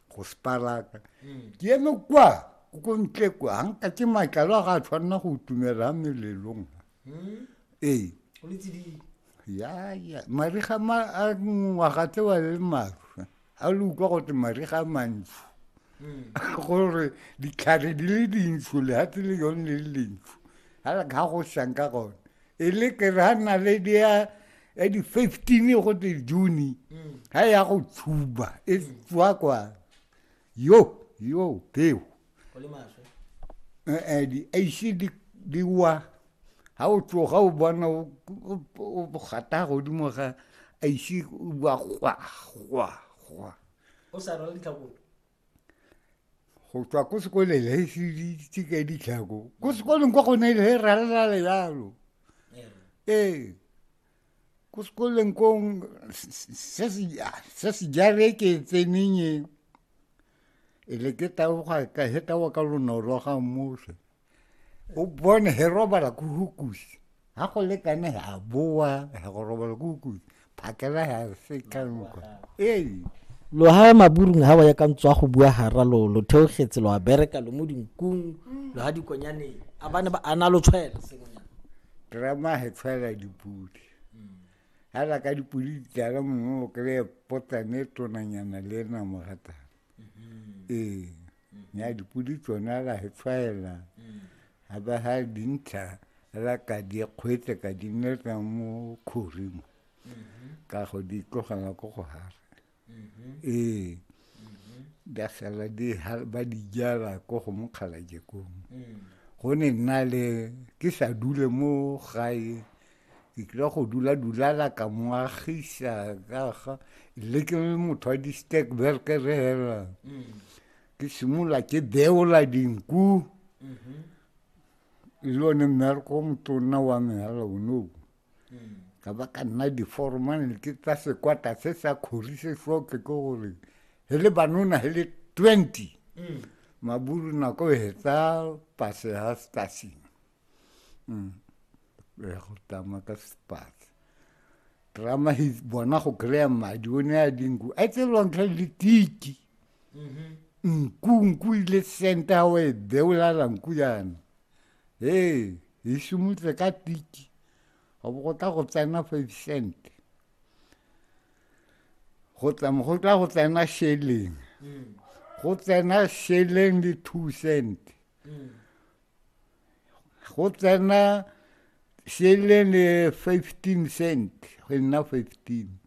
go sparaka mm. ke eme kwa ko ko ntle kwa ga nka ke matlalo a ga a tshwanela go tumela melelong mm. ee yaya mariga ma a ngwaga tse wa le maru a le utlwa gote mariga a mantsho mm. gore ditlhare di le dintsho lehatshe le yone le le dintsho ga go sanka gone e le ke ra nna le dia ya di 15 go te june ha ya go tshuba e tswa kwa yo yo peo eh di ise di di wa ha o tsoga o bona o gata godimo ga ise wa gwa gwa gwa o sa rwala ditlhakong go tswa ko sekoleng he se ditse ka ditlhako ko sekoleng kwa gone he ralala le jalo ee ko sekoleng kong se se jare ke tseneng e le ke taboga ka he taboga ka lonolo ga mmuso o bone he robala ku hukusi ha go lekane he a boa he go robala ku hukusi phakela he a se ka nka ee loha maburung ha wa ya ka ntswa go bua hara lo lo theogetse lo a bereka lo mo dinkung lo ha dikonyane a bane ba ana lo tshwela sengonyana drama he tshwela dipudi ha la ka dipudi di tlala mongwe o kry-e potsane tonanyana le ena mogatana Mm-hmm. Ee. Mm-hmm. Ya dipodi tsona ra e tshwaela. Mm. Ha ba ha dintsha ra ka di kgwetse ka di nna mo khorimo. Mm-hmm. Ka go di tlogela ko go hara. Ee. Da sala di ba di jala ko go mokgala jekong. Mm. Go ne nna le ke sa dule mo gae. ke tlile go dula dulala ka moagisa kaga le ke le motho wa di-stack berke re hela mm. ke simolola ke beola dinku mm-hmm. le one mmereko o motonna wa me hela onoo mm. ka ba ka nna diformane ke tsa sekwata se sa kgori se soke ke gore he le banona he le twenty mm. maburu nako e hetsa pase ha stasing mm. eh, go tama ka sepatse drama he bona go kry-a madi o ne a dinku a tselwang tlha le tiki mm-hmm. nku nku ile senta o e beolala nku yana ee e simotse ka tiki go bo go tla go tsena five cent go tsama go tla go tsena sheleng mm. go tsena sheleng le two cent mm. go tsena selene 15 cent go nna 15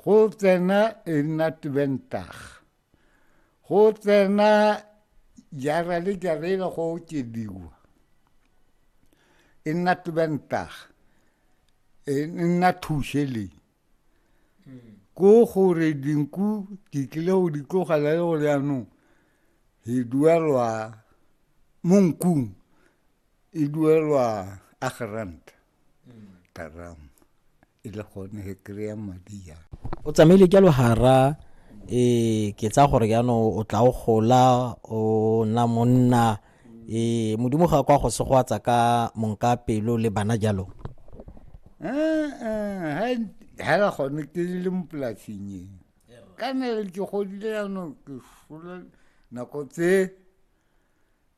go tsena e nna twentag go tsena jara le jara e go okediwa e nna twentag e nna thušeleng ko gore dinku di tlile go di tlogela le gore yanong e duelwa mo nkung e duelwa a geranta taramo e le gone he kry-a madi ya o tsamaile ka logara e ke tsa gore jaanong o tla o gola o nna monna ee modimo ga kwa go segwatsa ka monka pelo le bana jalo eh, eh, hela gone ke le mo polasing e ka nele ke godile yanong ke sola nako tse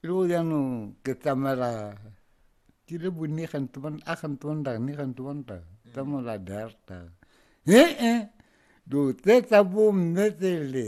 le go yanong ke tsamela ke le bone gante ban a gante ban da ne gante ban da tsamela darta e e do tse tsa bomme tsele